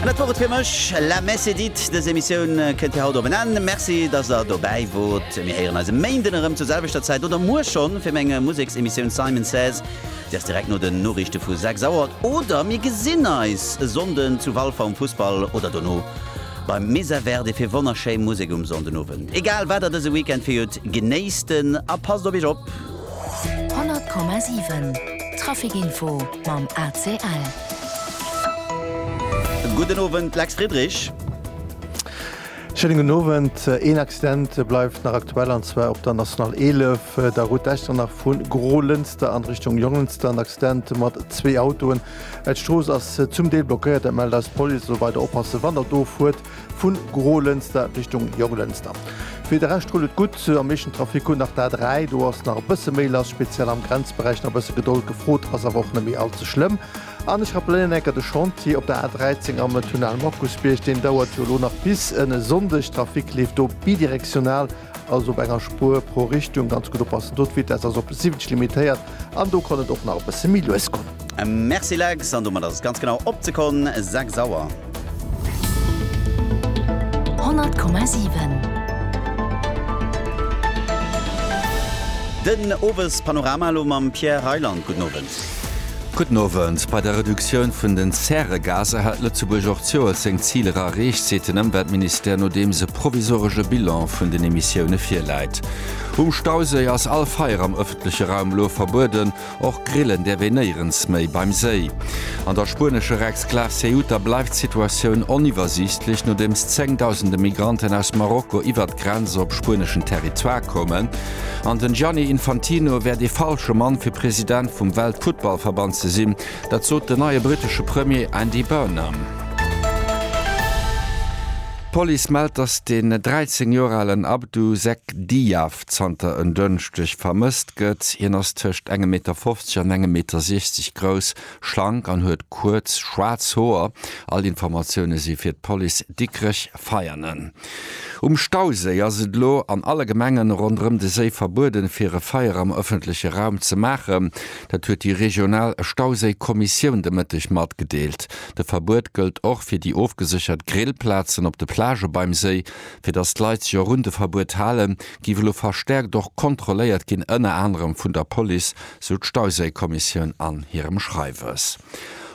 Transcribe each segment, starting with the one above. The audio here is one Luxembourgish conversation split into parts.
An dat wor et fir mech. La messe est dite, dës Emissioun kënnt fir haut op en Enn. Merci, dass der dobäi wort. Mir héieren eis e Méinden erëm zur selwechter Zäit oder muer schonn fir meng Museksemissioun Simon Says. Déi ass direkt no den Noriichte vu 6 Auer. Oder mir gesinn eis e Sonnden zu Walfer um Fussball oder dono beim Mesa Verde fir wonnerschéi Musek um Sonndenowend. Egal wat der dëse Weekend fir hutt, genéisst en a passt op iech op. 100,7 Trafic Info mam ACL. Gudden Owend, Lex Friedrich. Schéinen gudden Owend. Een Accident bleift nach aktuell, an zwar op der National 11, der Route d'Echternach vu Grolënster an Richtung Jonglënster. En Accident mat zwee Autoen. D'Strooss ass zum Deel blockéiert, dat mellt eis d'Police. Also weider oppassen, wann der do fuert. vun Grolënster Richtung Jonglënster. Fir de Rescht rullt et gutt, am meeschten Trafic hunn nach d'A3, do ass nach e bësse méi lass, speziell am Grenzberäich, nach e bësse Gedold gefrot, ass awer och net méi all ze schlëmm. An ech rappelléieren enker, de Chantier op der A13 am Tunnel Markusbierg, deen dauert jo elo nach bis en e Sonndeg, Trafic leeft do bidirektional. also op enger Spuer pro Richtung, ganz gutt oppassen do, d'Vitesse ass op 70 limitéiert an do kann et och nach e bësse méi lues goen. Merci Lex, an domat ass et ganz genau op d'Sekonn 6 Auer. 100,7. Den Owespanorama elo mam Pierre Reyland, gudden Owend. Gudden Owend. Bei der Reduktioun vun den Zäregaser hat Lëtzebuerg och d'Joert seng Ziler erreecht, seet den Ëmweltministère nodeems e provisoresche Bilan vun den Emissioune virläit. Um Stauséi ass all Feier am ëffentleche Raum elo verbueden, och grillen däerf een néierens méi beim Séi. An der spuenescher Exklav Ceuta bleift d'Situatioun oniwwersiichtlech, nodeems zéngdausende Migranten aus Marokko iwwert d'Grenz op spueneschen Territoire koumen. An den Gianni Infantino wär dee falsche Mann fir President vum Weltfuttballverband ze sinn. Dat sot den neie brittesche Premier Andy Burnham. D'Police mellt, datt den 13 Joer alen Abdou Zek Diaf zanter en Dënschdeg vermësst gëtt. Hien ass tëscht engem Meter 50 an engem Meter 60 grouss, schlank an huet kuerz schwaarz Hoer. All Informatioune si fir d'Police Dikrech-Veianen. Um Stauséi ass et elo an alle Gemengen ronderëm de Séi verbueden, fir e Feier am ëffentleche Raum ze maachen. Dat huet déi regional Stauséi-Kommissioun de Mëtteg matgedeelt. De Verbuet gëllt och fir déi ofgeséchert Grillplazen op de Plagë beim Séi. Fir datt d'Leit sech och un de Verbuet halen, géif elo verstäerkt och kontrolléiert ginn, ënner anerem vun der Police, sou d'Stauséi-Kommissioun an hirem Schreiwes.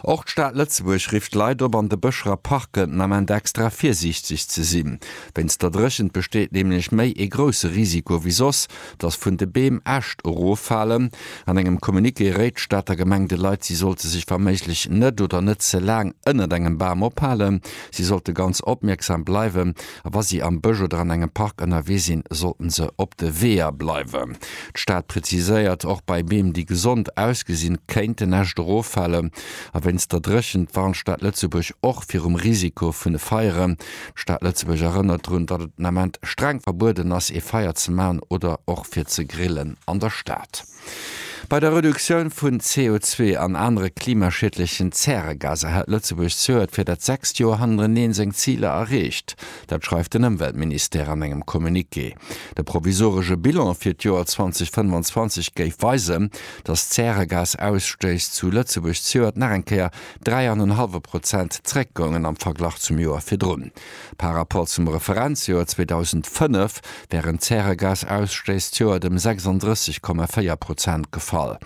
Och d'Stad Lëtzebuerg rifft d'Leit op, an de Bëscher a Parken den Ament extra virsiichteg ze sinn. Wéinst der Dréchent besteet nämlech méi ee grousse Risiko wéi soss, dass vun de Beem Äscht eroffalen. An engem Communiqué réit d'Stater Gemeng de Leit, si sollte sech wa méiglech net oder net ze laang ënnert engem Bam ophalen. Si sollte ganz opmierksam bleiwen. a wa si am Bësch oder an engem Park ënnerwee sinn, sollten se op de Weeër bleiwen. D'Stad preziséiert, och bei Beem, déi gesond ausgesinn, kéint en Äscht eroffalen. A wéinst der Dréchent warnt d'Stad Lëtzebuerg och virum Risiko vun Feieren. D'Stad Lëtzebuerg erënnert drun, datt et den Ament streng verbueden ass, ee Feier ze maachen oder och fir ze grillen an der Stad. Bei der Reduktioun vun CO2 an anere klimaschiedlechen Zäregaser hält Lëtzebuerg zuert fir dat sechst Joer hannereneen seng Ziler erreecht. Dat schreift den Ëmweltministère an engem Communiqué. De provisoresche Bilan fir d'Joer 2025 géif weisen, datt d'Zäregasausstouss zu Lëtzebuerg zuert nach eng Kéier dräi an en hallwe Prozent zeréckgoungen am Verglach zum Joer virdrun. Par rapport zum Referenzjoer 2005 wären d'Zäregasausstésstioert ëm 36,4 Prozent gefall.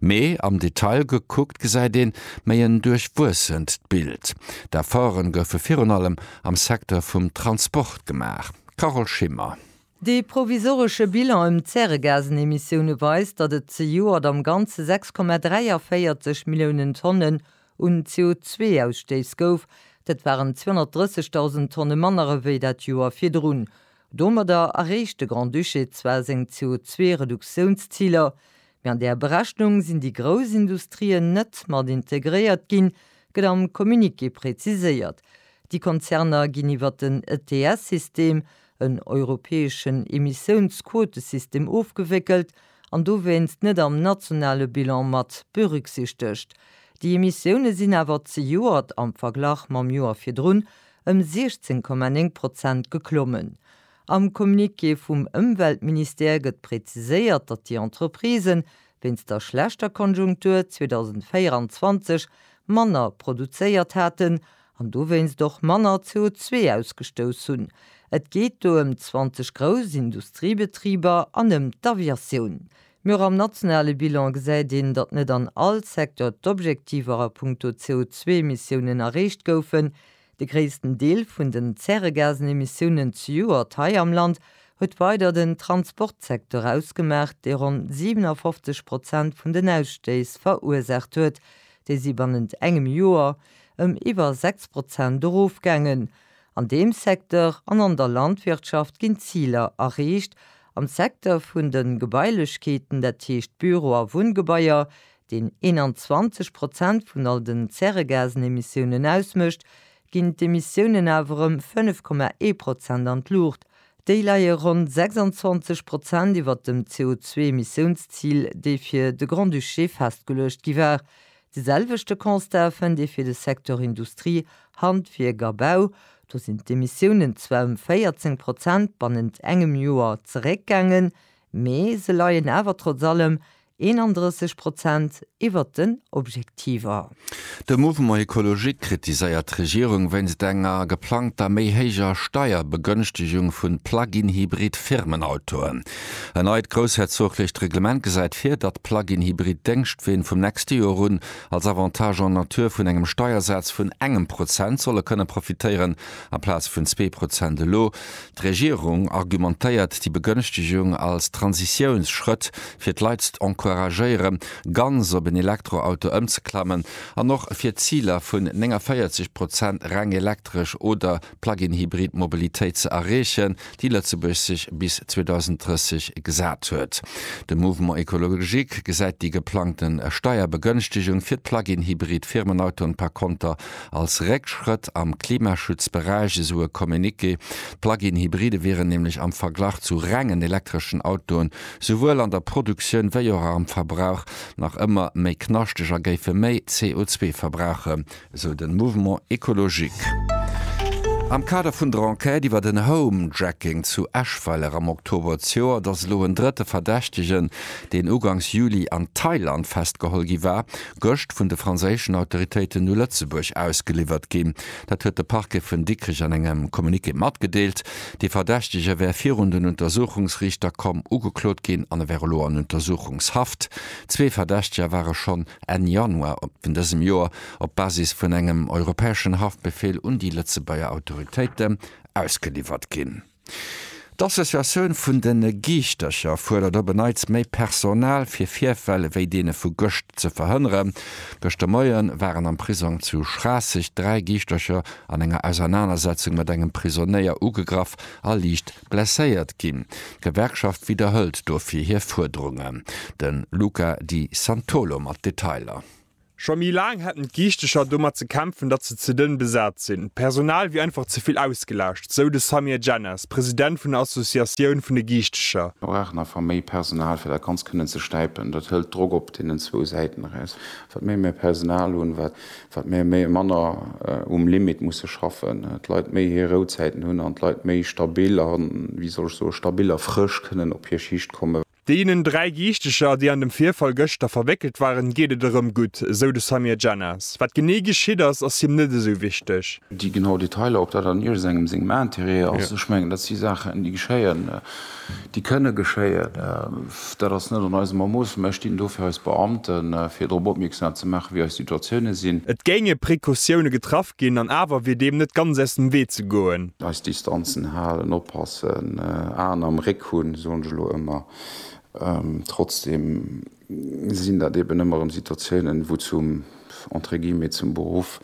Mee am Detail gekuckt gesäit een méi en duerchwuessent Bild. D'Efforte goufe virun allem am Secteur vum Transport gemaach. Carole Schimmer. Dee provisoresche Bilan ëm d'Zäregasenemissioune weist, datt et zejoert am Ganze 6,43 Milliounen Tonne un CO2-Ausstéiss gouf, dat waren 230.000 Tonne manner ewéi dat Joer virdrun. Domadder erreecht de Grand-Duché zwar seng CO2-Reduktiounsziler, mee an där Berechnung sinn déi grouss Industrien net mat integréiert ginn, gëtt am Communiqué präziséiert. Déi Konzerner ginn iwwer den ETS-System en europäeschen Emissiounsquotesystem ofgewéckelt an dowéinst net am nationale Bilan mat berücksichtegt. Déi Emissioune sinn awer zejoert am Verglach mam Joer virdrun ëm 16,9 Prozent geklommen. Am Communiqué vum Ëmweltministère gëtt präziséiert, datt déi Entreprisen wéinst der schlechter Konjunktur 2024 manner produzéiert haten an dowéinst och manner CO2 ausgestouss hunn. Et geet do ëm 20 grouss Industriebetriber an ëm d'Aviatioun. Mee och am nationale Bilan gesäit een, datt net an all Secteur d'Objektiver a puncto CO2-Emissiounen erreecht goufen. De gréissten Deel vun den Zäregasenemissiounen zejoert hei am Land huet weider den Transportsecteur ausgemaach, dee ronn 57 Prozent vun den Ausstéiss verursaacht huet, Déi si bannent engem Joer ëm iwwer 6 Prozent erofgaangen. An deem Secteur an an der Landwirtschaft ginn d'Ziler erreecht. Am Secteur vun de Gebailechkeeten, dat heescht Büro a Wunngebaier, deen 21 Prozent vun all den Zäregasenemissiounen ausmécht, ginn d'Emissiounen awer ëm 5,1 Prozent an d'Luucht Déi leie ronn 26 Prozent iwwert dem CO2-Emissiounszil, dee fir de Grand-Duché festgeluecht gi war. De selwechte Constat fënnt ee fir de Secteur Industrie, Handwierk a Bau. Do sinn d'Emissiounen zwar ëm 14 Prozent bannent engem Joer zeréckgaangen, mee se leien awer trotz allem 31 Prozent iwwert den Objektiver. De Mouvement Ecologique kritiséiert d'Regierung wéinst enger geplangter méi héijer Steierbegënchtegung vu Plug-in-Hybrid Firmenautoen. En neit groussherzoglecht Reglement gesäit vir, datt Plug-in-Hybrid Déngschtween vum nächste Joer un als Avantage en nature vun engem Steiersaz vun engem Prozent solle kënne profitéieren, amplaz vun zwee Prozent elo. D'Regierung argumentéiert déi Begënschtegung als Transitiounsschrëtt, fir d'Leit z'encouragéiere ganz op en Elektroauto ëmzeklammen an och fir d'Ziler vun 49 Prozent reng elektresch oder Plug-in-Hybrid Mobilitéit ze erreechen, déi Lëtzebuerg sech bis 2030 gesat huet. De Mouvement écologique gesäit déi geplangte Steierbegënschtegung fir d'Plug-in-Hybrid Firmenautoen par konter als Réckschrëtt am Klimaschutzberäich, esou e Communiqué. D'Plug-in-Hybride wieren nämlech am Verglach zu rengen elektreschen Autoen, souwuel an der Produktioun wéi och am Verbrauch, nach ëmmer méi knaschteg a géife méi CO2 verbrauchen, esou de Mouvement écologique. Am Kader vun der Enquête iwwer den Home-Jacking zu Eschweiler am Oktober d'Joer, et ass elo en drëtte Verdächtegen, deen ugangs Juli an Thailand festgeholl gi war, gëscht vun de franséischen Autoritéiten u Lëtzebuerg ausgeliwwert ginn. Dat huet de Parquet vun Dikrech an engem Communiqué matgedeelt. De Verdächtege wär virun den Untersuchungsriichter komm, ugeklot ginn an e wär elo an Untersuchungshaft. Zwee Verdächteger ware schonn Enn Januar vun dësem Joer op Basis vun engem europäeschen Haftbefeel un déi Lëtzebuerger Autoritéiten ausgeliwwert ginn. D'Associatioun vun de Geeschtercher fuerdert op en Neits méi Personal, fir Virfäll ewéi deene vu gëscht ze verhënneren. Gëscht de Moie waren am Prisong zu Schraasseg dräi Geeschtercher an enger Ausernanersetzung mat engem Prisonéier ugegraff a liicht blesséiert ginn. D'Gewerkschaft widderhëlt dofir hir Fuerderungen. De Luca Di Santolo mat Detailer. Scho méi laang hätten d'Giichtecher domat ze kämpfen, datt se ze dënn besat sinn. D'Personal wier einfach ze vill ausgelaascht, sou de Samir Djennas, President vun der Associatioun vun de Giichtecher. Mir brauchen einfach méi Personal, fir dat Ganzt kënnen ze stäipen. Dat hëlt Drock op deenen zwou Säiten eraus. Wat méi mir Personal hunn, wat mir méi manner um Limit musse schaffen, d'Leit méi hir Rouzäiten hunn an d'Leit méi stabil a, wéi soll ech soen, stabil a frësch kënnen op hir Schicht kommen. Deenen dräi Giichteger, déi an dem Virfall gëschter verwéckelt waren, geet et erëm gutt, esou de Samir Djennas. Wat genee geschitt ass, ass him net esou wichteg. Déi genau Detailer, ob dat an iergesengem sengem Interêt ass, ech mengen, dat si Saachen, déi geschéien, déi kënne geschéien. Dat ass net an eisem Ermooss. Mä ech dinn do fir eis Beamten, fir drop opmierksam ze maachen, wéi eis Situatioune sinn. Et géinge Precautioune getraff ginn an awer wier deem net ganz aus dem Wee ze goen. Eis Distanzen halen, oppassen, Aen am Réck Hunn, soen ech elo ëmmer. Trotzdem sinn dat eben ëmmer erëm Situatiounen, wou zum, entre guillemets, zum Beruff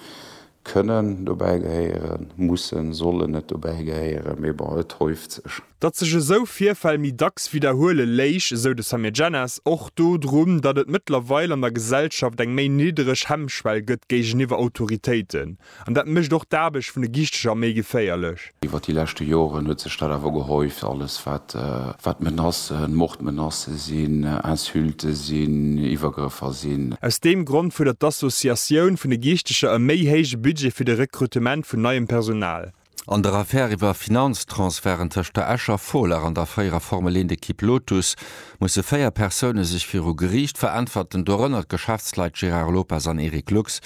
kënnen dobäi gehéieren, mussen, sollen net dobäi gehéieren, mee bon, et häuft sech. Datt sech esou Virfäll méi dacks widderhuele léich, esou de Samir Djennas, och dodrun, datt et mëttlerweil an der Gesellschaft eng méi niddereg Hemmschwell gëtt géigeniwwer Autoritéiten. An dat mécht och d'Aarbecht vun de Gischteger méi geféierlech. Iwwer déi leschte Joren huet sech dat awer gehäuft, alles wat Menacen, Mordmenacë sinn, Insulte sinn, Iwwergrëffer sinn. Aus deem Grond fuerdert d'Associatioun vun de Gischteger e méi héije Budget fir de Rekrutement vun neiem Personal. An der Affär iwwer Finanztransferten tëscht der Escher Folar an der fréierer Formel 1 Ekipp Lotus musse véier Persoune sech viru Geriicht veräntwerten, dorënner d'Geschäftsleit Gérard Lopez an Eric Lux.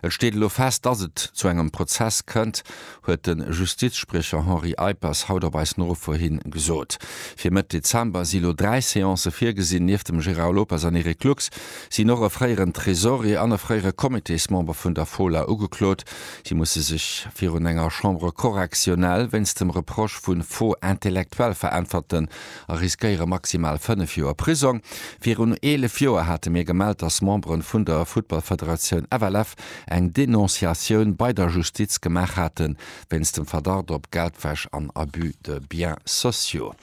Et steet elo fest, datt et zu engem Prozess kënnt, huet de Justizspriecher Henri Eippers haut op eis Nofro hin gesot. Fir Mëtt Dezember si lo dräi Seancë virgesinn. Nieft dem Gérard Lopez an Eric Lux sinn och e fréieren Tresorier an e fréiere Comitésmember vun der Folar ugeklot. Si musse sech virun enger Chambre correctionnelle wéinst dem Reproche vu Faux intellectuel veräntwerten a riskéiere maximal 5 Joer Prisong. Virun 11 Joer hate mir gemellt, dass Memberen vun der Futtballfederatioun FLF eng Denonciatioun bei der Justiz gemaach haten, wéinst dem Verdacht op Geldwäsch an Abus de biens sociaux.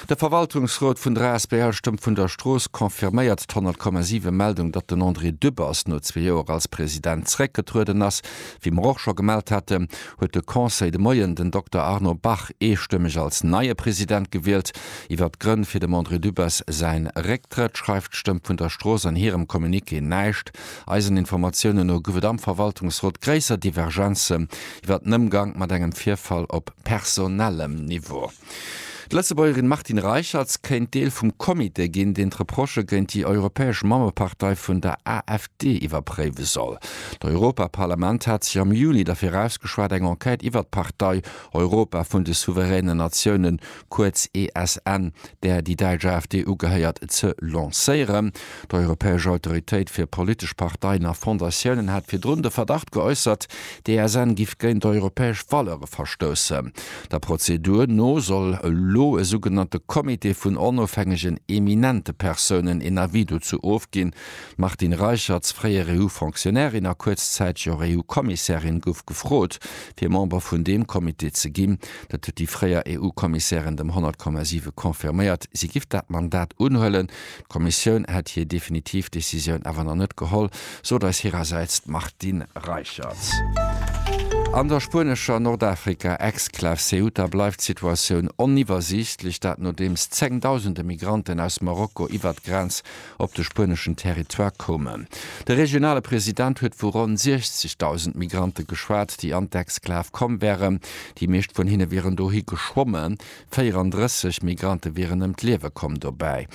De Verwaltungsrot vun der asbl Stëmm vun der Strooss confirméiert d'Honnertkommasive Meldung, datt den André Dübbers no zwee Joer als President zeréckgetrueden ass. Wéi mer och scho gemellt haten, huet de Conseil de Moien den Dokter Arno Bach eestëmmeg als neie President gewielt. Iwwert d'Grënn fir dem André Dübbers säin Récktrëtt schreift d'Stëmm vun der Strooss an hirem Communiqué näischt. Eisen Informatiounen no gouf et am Verwaltungsrot gréisser Divergenzen iwwert den Ëmgang mat engem Virfall op personellem Niveau. D'Lëtzebuergerin Martine Reicherts kéint Deel vum Comité ginn, deen d'Reprochë géint déi europäesch Mammepartei vun der AfD iwwerpréiwe soll. D'Europaparlament hat sech am Juni derfir ausgeschwat, eng Enquête iwwert d'Partei Europa vun de souveränen Natiounen, kuerz ESN, där déi däitsch AfD ugehéiert, ze lancéieren. D'Europäesch Autoritéit fir politesch Parteien a Fondatiounen hat virdrun de Verdacht geäussert, d'ESN giff géint europäesch Valeure verstoussen. Der Prozedur no soll elo e sougenannte Comité vun onofhängegen eminente Persounen een Avis dozou ofginn. D'Martine Reicherts, fréier EU-Fonctionnairin a kuerzzäiteg och EU-Kommissärin, gouf gefrot, fir Member vun deem Comité ze ginn. Dat huet déi fréier EU-Kommissärin dem 100,7 confirméiert, si giff dat Mandat unhuelen. D'Kommissioun hätt hir definitiv Decisioun awer nach net geholl, sot eis hirersäits d'Martine Reicherts. An der spuenescher Nordafrika-Exklav Ceuta bleift d'Situatioun oniwwersiichtlech, dat nodeems zengdausende Migranten aus Marokko iwwert d'Grenz op de spueneschen Territoire koumen. De regionale President huet vu ronn 60.000 Migrante geschwat, déi an d'Exklav komm wären. Déi meescht vun hinne wieren dohi geschwommen, 34 Migrante wieren ëm d'Liewe komm dobäi.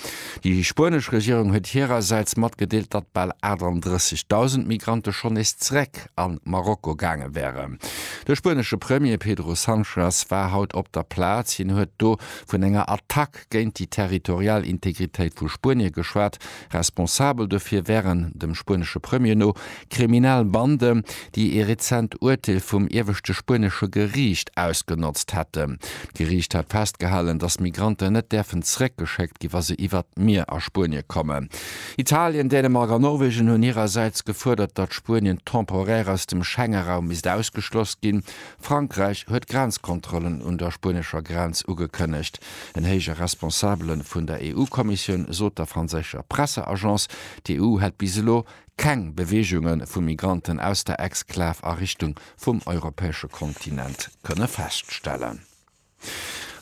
Déi spuenesch Regierung huet hirersäits matgedeelt, datt bal 38.000 Migrante schonn nees zeréck a Marokko gaange wären. De spuenesche Premier Pedro Sanchez war haut op der Plaz. Hien huet do vun enger Attack géint déi territorial Integritéit vu Spuenie geschwat. Responsabel dofir wären, dem spuenesche Premier no, kriminell Bande, déi ee rezent Urteel vum ieweschte spuenesche Geriicht ausgenotzt hätten. D'Geriicht hat festgehalen, datt Migranten net däerfen zeréckgeschéckt ginn, wa se iwwert d'Mier a Spuenie kommen. Italien, Dänemark a Norwegen hunn hirersäits gefuerdert, datt Spuenien temporaire aus dem Schengeraum misst ausgeschloss ginn. Frankräich huet Grenzkontrollen un der spuenescher Grenz ugekënnegt. En héije Responsabele vun der EU-Kommissioun sot der franséischer Presseagence, d'EU hätt bis elo keng Beweegunge vu Migranten aus der Exklav a Richtung vum europäesche Kontinent kënne feststellen.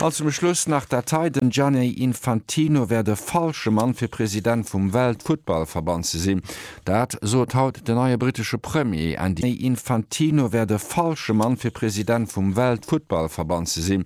An zum Schluss nach dat hei, Den Gianni Infantino wär de falsche Mann fir President vum Weltfuttballverband ze sinn. Dat sot haut den neie brittesche Premier Andy Infantino wär de falsche Mann fir President vum Weltfuttballverband ze sinn.